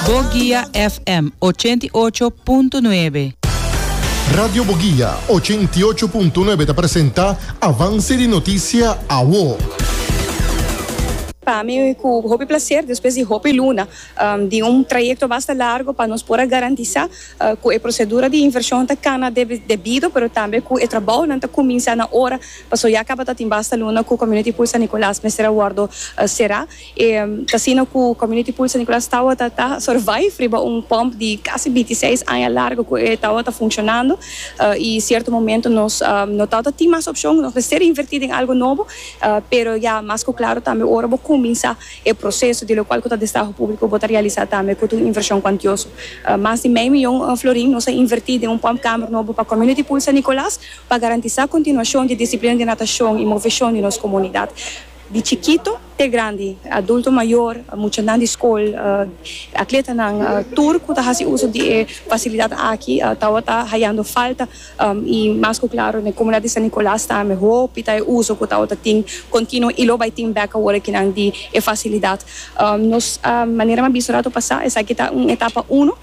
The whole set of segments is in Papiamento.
Boguia FM ochenta i ocho punto nuebe. Radio Boguia ochenta i ocho punto nuebe ta presenta Avance di Noticia Awo. Pa mi cu hopi placer despues di hopi luna di un trayecto basta largo pa nos por a garantisa cu e procedura di inversion ta cana debido pero tambe cu e trabaonan ta cuminsa na ora pasobra ya tabata tin basta luna cu Community Pool San Nicolas mester a wordo cera. E casino cu Community Pool San Nicolas tawata ta survive riba un pump di casi binti seis aña largo cu e tawata funcionando y cierto momento nos no tawata tin mas opcion, nos mester inverti den algo nobo, pero ya mas cu claro tambe ora bo cuminsa e proceso di locual cu ta destaho publico bo ta realisa tambe cu ta un inversion cuantioso. Mas di mei miyon florin nos a inverti den un pump camber nobo pa Community Pool San Nicolas pa garantisa continuacion di disciplina di natacion y movesion di nos comunidad. Di chikito te grandi, adulto mayor, muchanan di skol, atletanan, tur ku ta hasi uso di e fasilidat aki tabata hayando falta i mas ku klaro na e komunidat di San Nicolas tambe hopi ta e uso ku tabata tin kontinuo i lo bai tin bek awor e kinan di e fasilidat. Nos manera mi a bisa rato pasá esaki ta un etapa uno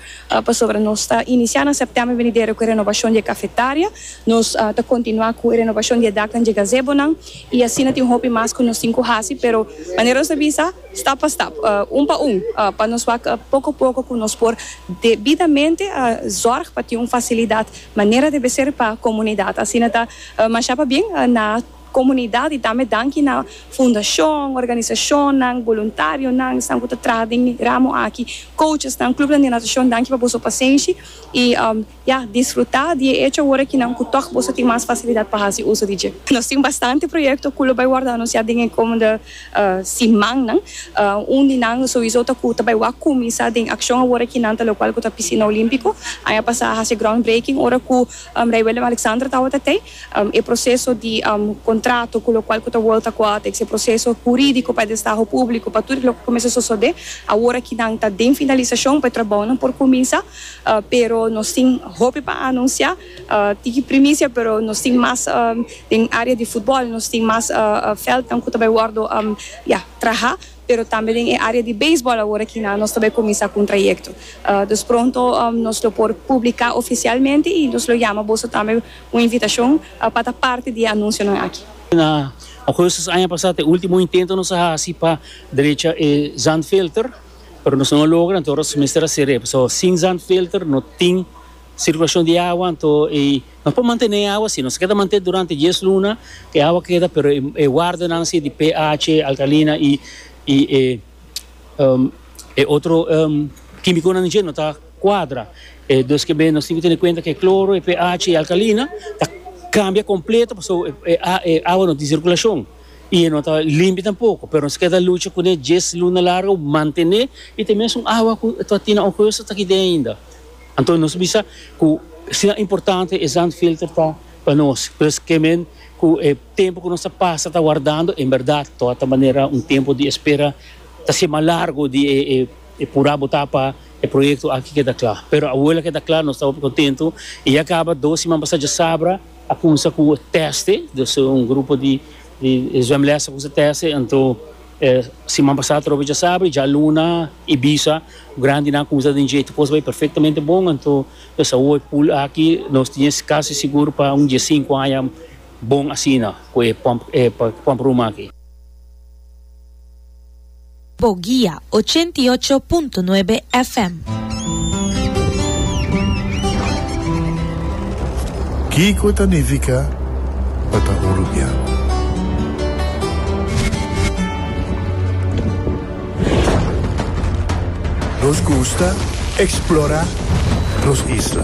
pasobra nos ta inisiá na sèptèmber venidero ku e renobashon di e kafetaria, nos ta kontinuá ku e renobashon di e daknan di e gazebonan. I asina tin hopi mas ku nos tin ku hasi, pero manera nos a bisa, stap pa stap, un pa un, pa nos wak poko poko ku nos por debidamente zòrg pa tin un fasilidat manera debe ser pa komunidat. Asina ta masha pabien na komunidat i tambe danki na fundashon, organisashonnan, boluntarionan, esnan ku ta traha den e ramo aki, kouchesnan, klupnan di natashon, danki pa boso pasenshi i Ya, disfrutá di e echo awor aki nan ku tòg boso tin mas fasilidat pa hasi uso di dje. Nos tin bastante proyekto ku lo bai wòrdu anunsiá den e komende simannan. Un di nan souizo ta ku ta bai wak kuminsá den akshon awor aki nan ta lokual ku ta Pisina Olímpiko. Aña pasá a hasi e groundbreaking ora ku Rei Willem-Alexander tabata tei. E proseso di kontrato ku lokual ku ta World Aquatics, e proseso hurídiko pa e destaho públiko, pa tur loke kuminsá sosodé awor aki nan ta den finalisashon pa e trabounan por kuminsá. Pero nos tin hopi pa anuncia. Tiki primicia pero nos tin mas den area di futbol nos tin mas veldnan cu ta bay wordo ya traha pero tambe den e area di beisbol awor aki nan nos ta bay cuminsa cu un trayecto dus pronto nos lo por publica oficialmente y nos lo yama boso tambe un invitacion pa ta parti di e anuncionan aki. Na augustus aña pasa ta e ultimo intento nos a haci pa drecha e zandfilter. pero nos no a logra anto nos mester a sir'é pasobra sin zandfilter no tin sirkulashon di awa anto i nos por mantené e awa si nos a keda mantén durante dies luna e awa keda pero e wardanan si di PH, alkalina i i e e otro kimikonan dje no ta kuadra e dus kib'e nos tin ku tene kuenta ku e kloro e PH i e alkalina ta kambia kompleto pasobra e awa no tin sirkulashon. i e no ta limpi tampoko, pero nos keda lucha kuné djes luna largu, mantené i te mesun awa ku ta tin na un hueso ta kid'é ainda. Anto nos bisa ku si nan importante e zandfilter ta pa nos, pues ke men ku e tempu ku nos ta pasa ta wardando en bèrdat to ta manera un tempu di espera ta ser mas largu di e e purá botá pa e proyekto aki keda kla. Pero awola keda kla nos ta hopi kontentu i ya kaba dos siman pasá djasabra, A cuminsa cu teste, dus un grupo di zwemles a cuminsa teste, anto siman pasa a trobe djasabra y djaluna, Ibiza, grandinan cuminsa den dje, tu cos bay perfectamente bon, anto nos a hui pool aki, nos tin es casi sigur pa un dje sinku aña bon asina cu e pump room aki. Bo guia ochenta i ocho punto nuebe FM. Kiko ta nifica pa ta uruguiano? Nos gusta explora nos isla.